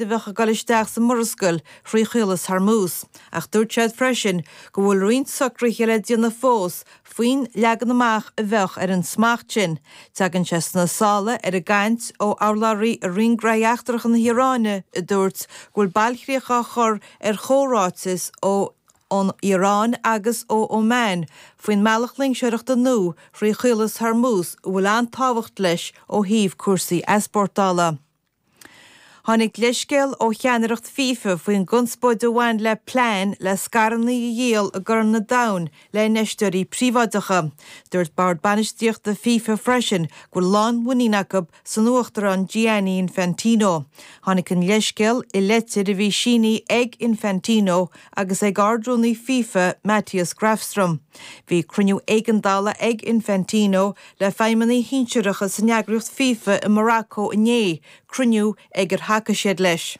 a bheadh ag dul isteach sa Mhurascaill thrí Chaolas Hormuz, ach dúirt siad freisin go bhfuil roinnt socruithe le déanamh fós faoin leagan amach a bheadh ar an smacht sin. Tagann sé sna sála ar an gcaint ó urlabhraí i Roinn Gnóthaí Eachtracha na hIaráine a dúirt go bhfuil bailchríoch á chur ar chomhráiteas ón Iaráin agus ó Oman faoin mbealach loingseoireachta nua thrí Chaolas Hormuz a bhfuil an-tábhacht leis ó thaobh cúrsaí easpórtála. Tháinig leithscéal ó cheannaireacht fifa faoin gconspóid a bhain le plean le scaireanna a dhíol i gCorn an Domhain le infheisteoirí príobháideacha. Dúirt bord bainistíochta fifa freisin go bhfuil lánmhuinín acu san uachtarán Gianni Infantino. Tháinig an leithscéal i litir a bhí sínithe ag Infantino agus ag ardrúnaí fifa Mattias Grafström. Bhí cruinniú éigeandála ag Infantino le feidhmeannaigh shinsearacha san eagraíocht fifa i Morocco inné, cruinniú ag ar thacaigh siad leis.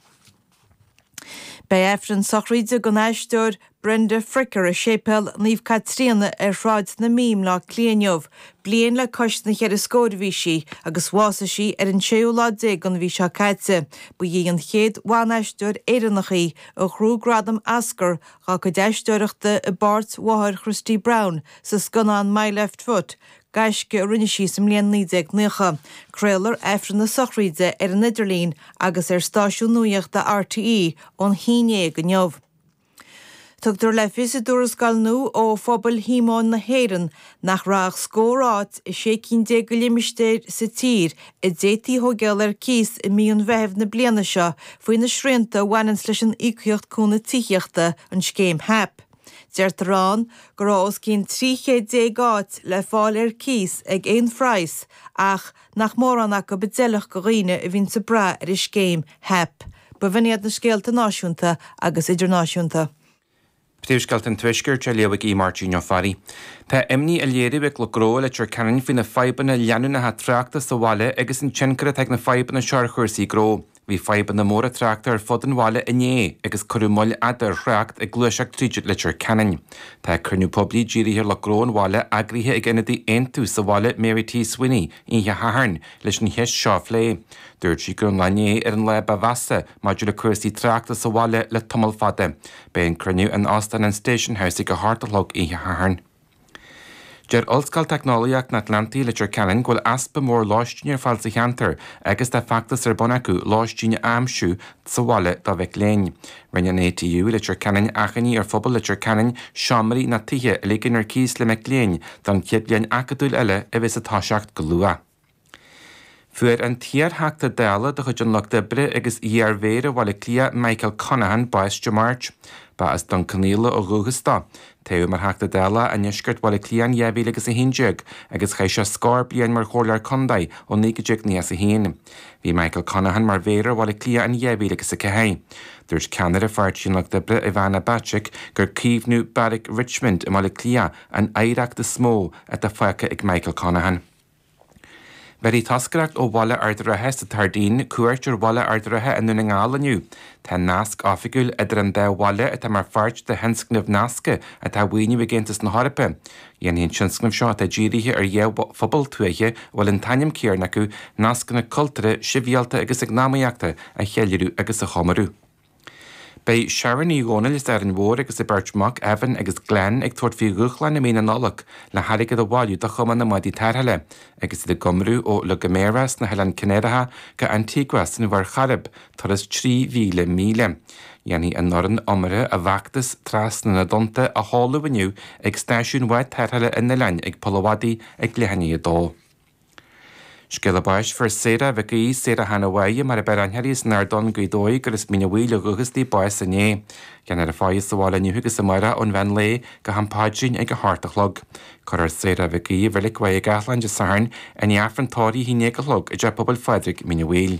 Beidh Aifreann sochraíde don aisteoir Brenda Fricker i Séipéal Naomh Caitríona ar Shráid na Mí i mBleá Cliath inniu. Bliain le cois na gceithre scór a bhí sí agus bhásaigh sí ar an séú lá déag den mhí seo caite. Ba í an chéad bhan-aisteoir Éireannach í a ghnóthaigh gradam Oscar dá cuid aisteoireachta i bpáirt mháthair Christy Brown sa scannán My Left Foot, gaisce a rinne sí sa mbliain 1990. Craolfar Aifreann na Sochraíde ar an idirlíon agus ar stáisiún nuaíochta RTÉ ón haon déag inniu. Tugtar le fios i dtuarascáil nua ó Phobail Shíomóin na hÉireann Nach raibh ach scór áit i sé cinn déag de limistéir sa tír a d'fhéadfaí a thóigeáil ar cíos i mí an Mheithimh na bliana seo faoi na srianta a bhaineanns leis an Íocaíocht Cúnaimh Tithíochta, an scéim HAP. Deirtear ann go raibh os cionn trí chéad déag áit le fáil ar cíos ag aon phraghas ach nach mórán acu a d'fheilfeadh do dhaoine a bhíonns ag brath ar an scéim HAP. Agus b'in iad na scéalta náisiúnta agus idirnáisiúnta. Príomhscéalta an Tuaiscirt á léamh ag Aodh Máirtín Ó Fearraigh. Tá imní á léiriú ag lucht gnó i Leitir Ceanainn faoi na fadhbanna leanúnacha tráchta sa bhaile agus an tionchar atá ag na fadhbanna seo ar chúrsaí gnó. Bhí fadhbanna móra tráchta ar fud an bhaile inné agus cuireadh moill fhada ar thrácht ag gluaiseacht tríd Leitir Ceanainn. Tá cruinniú poiblí dírithe ar lucht gnó an bhaile eagraithe ag ionadaí Aontú sa bhaile Mary T. Sweeney oíche Shathairn leis an cheist seo a phlé. Dúirt sí go raibh an lá inné ar an lá ba mheasa maidir le cúrsaí tráchta sa bhaile le tamall fada. Beidh an cruinniú in Óstán an Station House ag a hocht a chlog oíche Shathairn. Deir Ollscoil Teicneolaíochta an Atlantaigh i Leitir Ceanainn go bhfuil easpa mór lóistín ar fáil sa cheantar agus tá feachtas ar bun acu lóistín a aimsiú sa bhaile do mhic léinn. Rinne an ATU i Leitir Ceanainn achainí ar phobal Leitir Ceanainn seomraí nó tithe a ligean ar cíos le mic léinn don chéad bhliain acadúil eile a bheidheas ag toiseacht go luath. Fuair an t-iarTheachta Dála de chuid an Lucht Oibre agus iarmhéara Bhaile Átha Cliath Michael Conaghan bás Dé Máirt. Ba as Dún Cionnaola ó dhúchas dó. Toghadh mar Theachta Dála i ndeisceart Bhaile Átha Cliath in 2011 agus chaith sé scór bliain mar chomhairleoir contae ó 1991. Bhí Michael Conaghan mar mhéara Bhaile Átha Cliath in 2004. Dúirt ceannaire Pháirtí an Lucht Oibre Ivana Bacik gur caomhnú Beairic Richmond i mBaile Átha Cliath an oidhreacht is mó atá fágtha ag Michael Conaghan. Bhéarfaidh toscaireacht ó bhaile Ardara sa tSairdín cuairt ar bhaile Ard an Rátha i nDún na nGall inniu. Tá nasc oifigiúil idir an dá bhaile atá mar pháirt de thionscnamh nasctha atá á mhaoiniú ag Aontas na hEorpa. Dhéanfaidh an tionscnamh seo atá dírithe ar dhá phobal tuaithe a bhfuil an t-ainm céanna acu nascanna cultúrtha, sibhialta agus eacnamaíochta a cheiliúradh agus a chomóradh. Beidh Sharon Uí Dhónaill as Árainn Mhór agus a beirt mhac, Evan agus Glenn, ag tabhairt faoi dhúshlán i mí na Nollag le hairgead a bhailiú do Chumann na mBádaí Tarrthála agus iad ag iomramh ó La Gomera sna hOileáin Chanáracha go Antigua san Mhuir Chairib, turas trí mhíle míle. Dhéanfaidh an fhoireann iomartha a bhfeachtas Trasna na dTonnta a sheoladh inniu ag Stáisiún Bhád Tarrthála an oileáin ag Poll an Mhadaidh ag leath i ndiaidh a dó. Scéala báis. Fuair Sarah Mhic Aoidh, Sarah Hannah Bháidhe mar a b'fhearr aithne uirthi as an Ard Donn Gaoth Dobhair gur as Mín Uí Bhaoill ó dhúchas di bás inné. Déanfar a faire sa bhaile inniu agus amárach ón mheán lae go ham paidrín ag a hocht a chlog. Cuirfear Sarah Mhic Aoidh i Reilig Mhachaire Gathlán Dé Sathairn i ndiaidh Aifreann tórraimh a haon déag a chlog i dTeach Pobail Phádraig, Mín Uí Bhaoill.